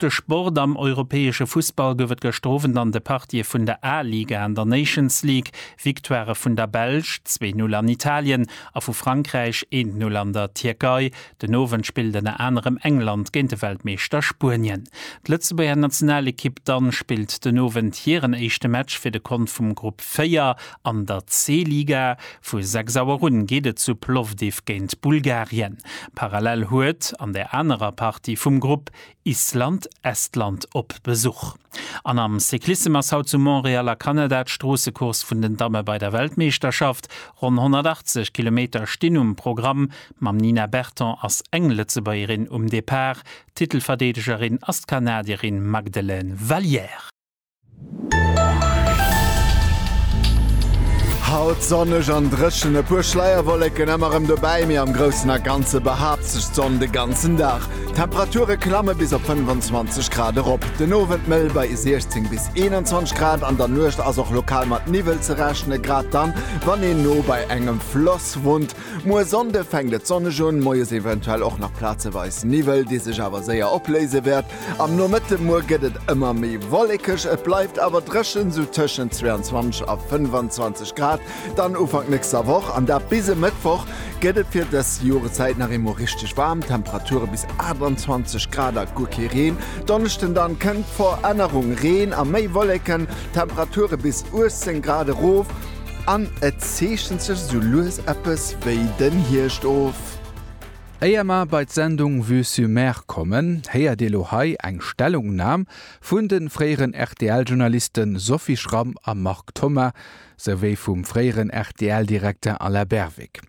De Sport am europäesche Fussball gouf et gëschter Owend an de Partië vun der A-Liga an der Nations League. Victoirë vun der Belsch, zwee Null an Italien, a vu Frankräich, eent Null an der Tierkei. Den Owend spillt ënner anerem England géint de Weltmeeschter Spuenien. D'Lëtzebuerger Nationalekipp dann spillt den Owend hiren éischte Match fir de Kont vum Grupp 4 an der C-Liga. Vu 6 Auer un geet et zu Plovdiv géint Bulgarien. Parallel huet an der anerer Partie vum Grupp Island, Estland op Besuch. An am Cyclissem ass haut zu Montréal a Kanada d'Stroossecourse vun den Damme bei der Weltmeeschterschaft. Ronn 180 Kilometer stinn um Programm. Mam Nina Berton ass eng Lëtzebuergerin um Depart. Titelverdeedegerin ass d'Kanadierin Magdelaine Valliere. Haut sonneg an dréchen, e puer Schleierwollécken emmer rem dobäi, mee am groussen a ganze behaapt sech d'Sonn de ganzen Dag. D'Temperature klamme bis op 25 Grad erop, den Owend mëll bei 16 bis 21 Grad. An der Nuecht ass och lokal mat Niwwel ze rechnen, grad dann, wann een no bei engem Floss wunnt. Muer Sonnde fänkt et sonneg un, moies eventuell och nach plazeweis Niwwel, dee sech awer séier opléise wäert. Am Nomëtte muer gëtt et ëmmer méi wollekeg, et bleift awer dréchen, sou tëschent 22 a 25 Grad dann Ufank nächster Woch, an dat bis e Mëttwoch. Gëtt et fir dës Joreszäit nach eemol richteg waarm, Temperature bis 28 Grad a guer kee Reen. Donneschden dann kënnt d'Verännerung, Reen a méi Wolleken, Temperature bis 18 Grad erof an et zeechent sech sou lues eppes wéi den Hierscht of. Éier mer bei d'Sendung Vue sur Mer kommen, héiert Dir lo hei eng Stellungnam vun de fréieren RTL-Journaliste Sophie Schramm a Marc Thoma, souwéi vum fréieren RTL-Direkter Alain Berwick.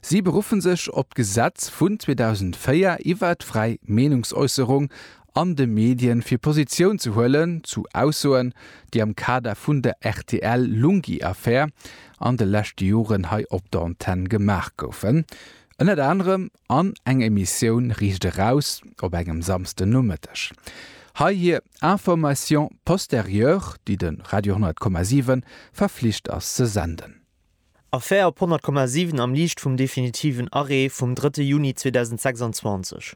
Si beruffen sech op d'Gesetz vun 2004 iwwer d'fräi Meenungsäusserung an de Medien, fir Positioun ze huelen zu Aussoen, déi am Kader vun der RTL-Lunghi-Affär an de leschte Joren hei op der Antenne gemaach goufen. Ënnert anerem an eng Emissioun Riicht eraus op engem Samsden Nomëtteg. Hei hir Information postérieure, déi de Radio 100,7 verflicht ass ze senden. Affär op 100,7 am Liicht vum definitiven Arrêt vum drëtte Juni 2026.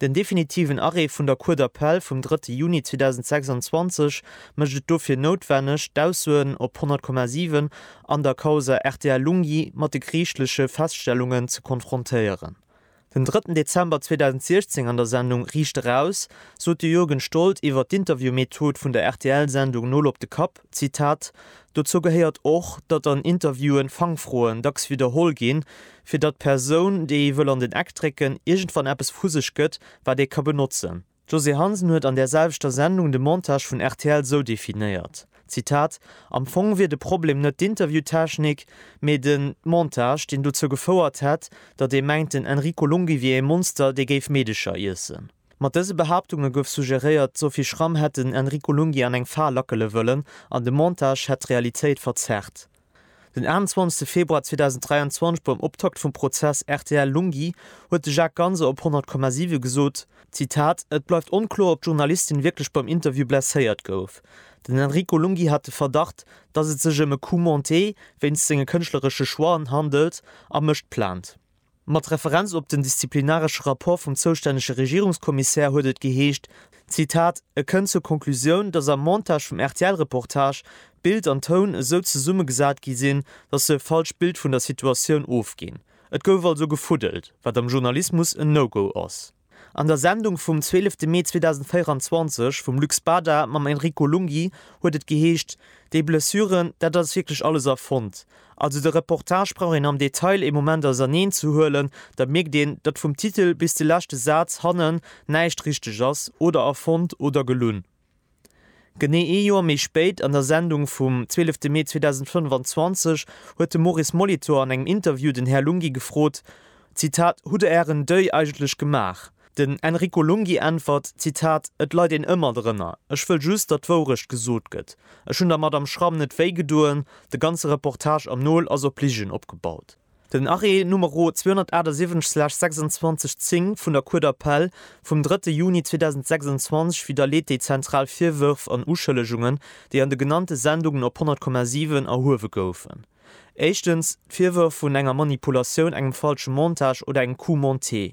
Den definitiven Arrêt vun der Cour d'appel vum drëtte Juni 2026 mécht et dofir noutwenneg, d'Aussoen op 100,7 an der Causa rtl Lunghi mat de geriichtleche Feststellungen ze konfrontéieren. Den drëtten Dezember 2016 an der Sendung Riicht eraus! sot de Jürgen Stoldt iwwer d'Interviewmethod vun der RTL-Sendung Nol op de Kapp, Zitat, Dozou gehéiert och, datt an Interviewen Fangfroen dacks widderholl ginn, fir datt d'Persoun, déi ee wëll an den Eck drécken, iergendwann eppes vu sech gëtt, wat ee ka benotzen. D'Josée Hansen huet an där selwechter Sendung de Montage vun rtl esou definéiert, Zitat, Am Fong wier de Problem net d'Interviewtechnik, mee de Montage, deen dozou gefouert hätt, datt ee mengt, den Enrico Lunghi wier ee Monster, dee géif Meedecher iessen. Mat dëse Behaaptunge gouf suggeréiert, d'Sophie Schramm hätt den Enrico Lunghi an eng Fal lackele wëllen an de Montage hätt d'Realitéit verzerrt. Den 28 Februar 2023 beim Optakt vum Prozess rtl Lunghi huet de Jacques Ganser op 100,7 gesot, Zitat, Et bleift onkloer, ob d'Journalistin wierklech beim Interview blesséiert gouf. Den Enrico Lunghi hat de Verdacht, dass et sech ëm e Coup monté wéinst senge kënschtleresche Choixen handelt a mécht Plainte. Mat Referenz op den disziplinaresche Rapport vum zoustännege Regierungskommissär huet et geheescht, Zitat, E kënnt zur Konklusioun, datt am Montage vum RTL-Reportage Bild an Toun esou zesummegesat gi sinn, datt se e falscht Bild vun der Situatioun ofginn. Et gouf also gefuddelt, wat am Journalismus en No-Go ass. An der Sendung vum 12 Mee 2024 vum Lux Bada mam Enrico Lunghi huet et geheescht, déi Blessuren, dat ass wierklech alles erfonnt. Also de Reportage brauch een am Detail ee Moment auserneen ze huelen, da mierkt een, datt vum Titel bis de leschte Saz hannen näischt richteg ass oder erfonnt oder gelunn. Genee ee Joer méi spéit, an der Sendung vum 12 Mee 2025, huet de Maurice Molitor an engem Interview den Här Lunghi gefrot, Zitat, Hutt Der Ären Deuil eigentlech gemaach? Den Enrico Lunghi äntwert, Zitat, Et leit een ëmmer drënner. Ech wëll just, datt d'Wourecht gesot gëtt. Ech hunn der Madame Schramm net wéi gedoen. De ganze Reportage am Nol ass op Ligen opgebaut. Den Arrêt Numero 278/26 10 vun der Cour d'appel vum 3 Juni 2026 widderleet déi zentral Virwërf an Uschëllegungen, déi an de genannte Sendungen op 100,7 erhuewe goufen. Éischtens, d'Virwërf vun enger Manipulatioun, engem falsche Montage oder engem Coup monté.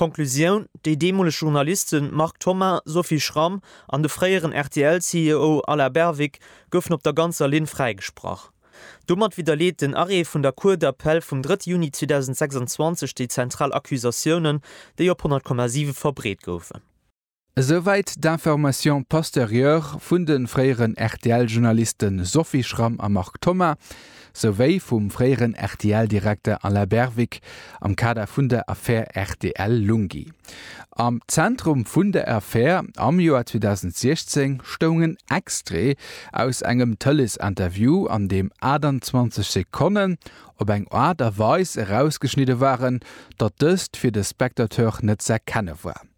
Konklusioun, Déi deemoleg Journalisten Marc Thoma, Sophie Schramm an de fréieren RTL-CEO Alain Berwick goufen op der ganzer Linn fräigesprach. Domat widderleet den Arrêt vun der Cour d'appel vum 3 Juni 2026 déi zentral Accusatiounen, déi op 100,7 verbreet goufen. Esouwäit d'Information posterieure vun de fréieren RTL-Journaliste Sophie Schramm a Marc Thoma, souwéi vum fréieren RTL-Direkter Alain Berwick am Kader vun der Affär RTL-Lunghi. Am Zentrum vun der Affär am Joer 2016 stoung en Extrait aus engem Tëleesinterview, an deem 28 Sekonnen op eng Aart a Weis erausgeschnidde waren, datt dëst fir de Spectateur net z'erkenne war.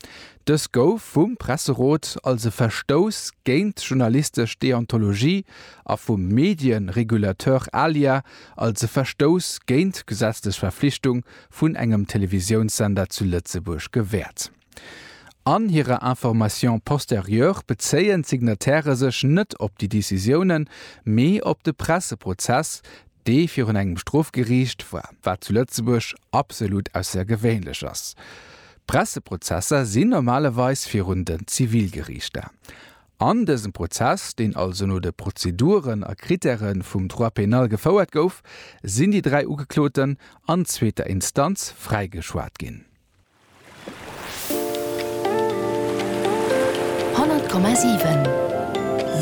Dës gouf vum Presserot als e Verstouss géint d'journalistesch Deontologie a vum Medienregulateur ALIA als e Verstouss géint d'gesetzlech Verflichtung vun engem Televisiounssender zu Lëtzebuerg gewäert. An hirer Information postérieure bezéien d'Signatairë sech net op déi Decisiounen, mee op de Presseprozess, dee virun engem Strofgeriicht war, wat zu Lëtzebuerg absolut aussergewéinlech ass. D'Presseprozesser sinn normalerweis virun den Zivilgeriichter. An dësem Prozess, deen also no de Prozeduren a Krittäre vum Droit pénal gefouert gouf, sinn déi dräi Ugekloten an zweeter Instanz fräigeschwat ginn. Honnert Komma siwen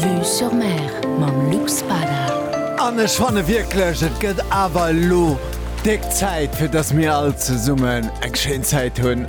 Vue sur Mer mam Luc Spada. An ech fanne wierklech, et gëtt awer elo Déck Zäit fir dass mir all zesummen eng schéin Zäit hunn.